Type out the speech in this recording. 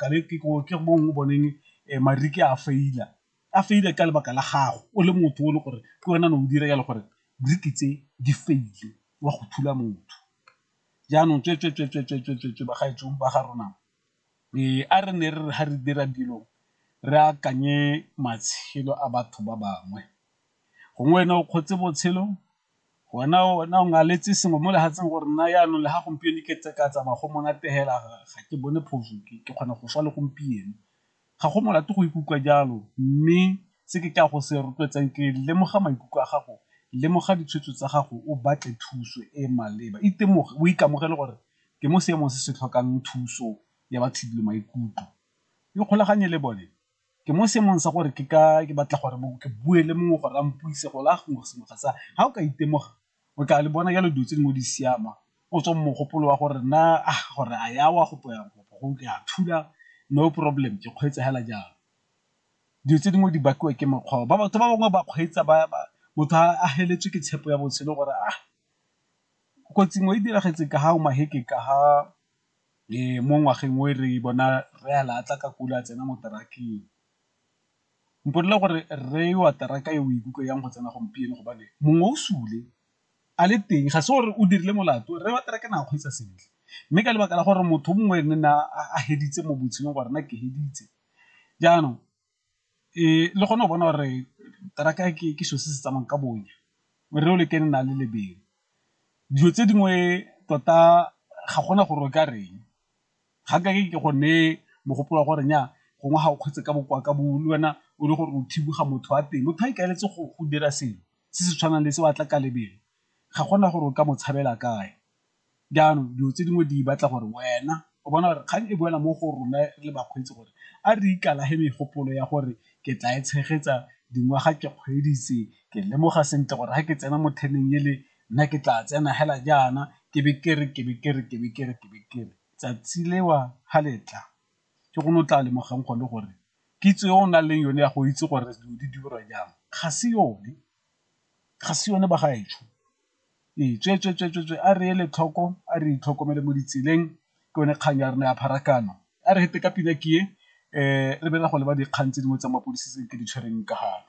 kabe ke go ke mo o boneng marike a faila a faile ka lebaka la gago o le motho o le gore ke wena ne o dira jalo gore briki tse di faile wa go thula motho jaanong tswetswetswetswetswetswe bagaetsong ba ga rona ee a re ne re re ga re dira dilo re akanye matshelo a batho ba bangwe gongwe wena o kgotse botshelo Wena o ngaletse sengwe mo lefatsheng gore nna jaanong le ga gompieno ke tse ka tsamaya go monate fela ga ke bone phoso ke kgona go swa le gompieno. Ga go molato go ikutlwa jalo mme se ke ka go se rotloetsang ke lemoga maikutlo a gago, lemoga ditshwetso tsa gago o batle thuso e e maleba, itemoge o ikamogele gore ke mo seemong se se tlhokang thuso ya batho le maikutlo ikgolaganye le bone. ke mo seemong sa gore ke ka ke batla gore ke bue le mongwe gore a mpuise go la gongwe sengwe ga sa ga o ka itemoga o tla le bona jalo dilo tse dingwe di siama o tswa mogopolo wa gore na a gore a ya wa go poya kopo go ke a thula no problem ke kgweetsa hela jalo dilo tse dingwe di bakiwa ke mokgwa ba batho ba bangwe ba kgweetsa ba motho a heletswe ke tshepo ya botshelo gore a kotsi ngwe e diragetse ka ga o maheke ka ga mo ngwageng o re bona rre a latlha ka kula a tsena mo terakeng, mpodela gore rre eo a teraka e o ikutlwa jang go tsena gompieno gobane mongwe o sule a le teng ga se gore o dirile molato rre wa teraka ne a kgweetsa sentle, mme ka lebaka la gore motho mongwe ne a feditse mo botshelong gore nna ke feditse jaanong le kgone go bona gore teraka ke selo se se tsamayang ka bonya re o le kene na le lebelo dilo tse dingwe tota ga gona gore o ka reng ga ka ke go ne mogopolo wa gore nya gongwe ga o kgotse ka bokoa ka bo le wena o le gore o thiboga motho wa teng motho a ikaeletse go dira selo se se tshwanang le se batla ka lebelo ga gona gore o ka mo tshabela kae jaanong dilo tse dingwe di batla gore wena o bona gore kgang e boela mo go rona le bakgweetsi gore a re ikalage megopolo ya gore ke tla e tshegetsa dingwaga ke kgweeditse ke lemoga sentle gore ga ke tsena mo teneng ele nna ke tla tsena hela jaana ke be ke re ke be ke re ke be ke re ke be ke re tsatsi lewa ha letla ke gone o tla lemogang gone gore kitso e o nang le yone ya go itse gore dilo di dirwa jang ga se yone. ga se yone ba gaetsho ee tsweetsweetswe a re ele tlhoko a re itlhokomele mo ditseleng ke yone kgang ya rona ya pharakano a re fete ka pina ke e re be re go leba dikgang tse dingwe tsa mapodisi tse ke di tshwereng ka gale.